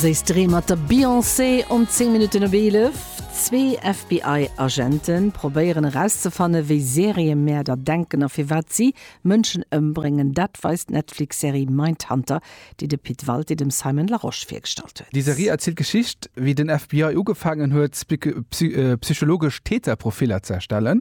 Séiss Dreem mat der Beyoncé um 10 Minutten op 11. Zwee FBI-Agente probéieren erauszefanne wéi Seriëmäerder denken a firwat si Mënschen ëmbréngen. Dat weist d'Netflix-Serie Mindhunter, déi de Pit Walté dem Simon Larosche virgestallt huet. Déi Serie erzielt d'Geschicht, wéi den FBI ugefaangen huet, psychologesch Täterprofiller ze erstellen.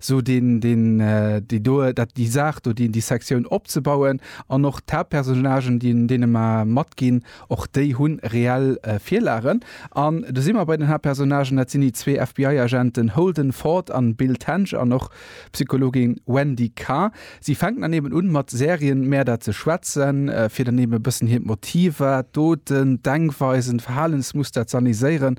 sou deen, deen, déi do, dat, déi Saach do, déi, déi Sektioun opzebauen an och d'Haaptpersonnagen, déi, deene mer matginn, och déi hu reell Virlagen. An do si mer bei den Haaptpersonnagen, dat sinn déi zwee FBI-Agenten Holden Ford an Bill Tench an och d'Psychologin Wendy Carr. Si fänken dann eben un, mat Serienmäerder ze schwätzen, fir dann eben e bëssen hiert Motiver, d'Doten, d'Denkweisen, d'Verhalensmuster z'analyséieren.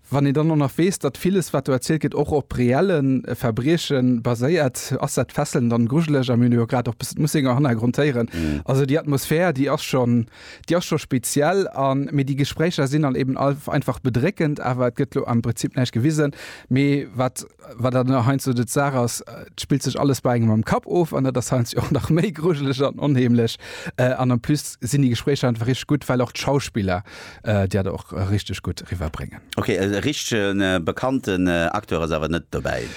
Wann een dann och nach weess, datt villes, wat do erzielt gëtt, och op reelle Verbrieche baséiert, ass dat fesselnd an grujeleg. A mir hunn jo grad och bëssen d'Mussinger Hannergrond héieren. Also déi Atmosphär, déi ass schon, déi ass scho speziell. An, mee déi Gespréicher sinn dann eben einfach bedréckend. Awer et gëtt elo am Prinzip näischt gewisen. Mee wat, wat dann heiansdo de d'Saach ass, et spillt sech alles bei engem am Kapp of. An dat ass heiansdo och nach méi grujeleg an onheemlech. An en plus sinn déi Gespréicher einfach richteg gutt, well och d'Schauspiller, Dir hat och richteg gutt riwwer bréngen. Ok, e richtegen bekannten Acteur ass awer net dobäi?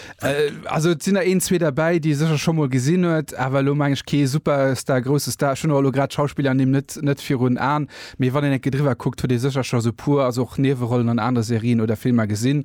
Also et sinn der een zwee derbäi déi e sécher scho mol gesinn huet, awer elo meng ech kee Superstar, grousse Star. Ech hunn och elo grad d'Schauspillernimm net net virun Aen, mee wann een enke driwwer kuckt huet ee sécher scho esou puer, also och Niewerollen an anere Serien oder Filmer gesinn.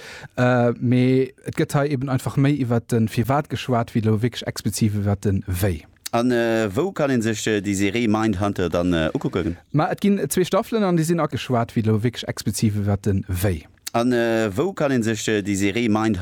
Mee et gëtt hei eben einfach méi iwwert de Firwat geschwat, wéi elo wierklech expliziv iwwert de Wéi. A wou kann ee sech déi Serie Mindhunter dann ukucken? Ma et ginn zwee Staffelen an déi sinn ageschwat, wéi elo wierklech expliziv iwwert de Wéi. A wou kann ee sech déi Serie Mindhunter.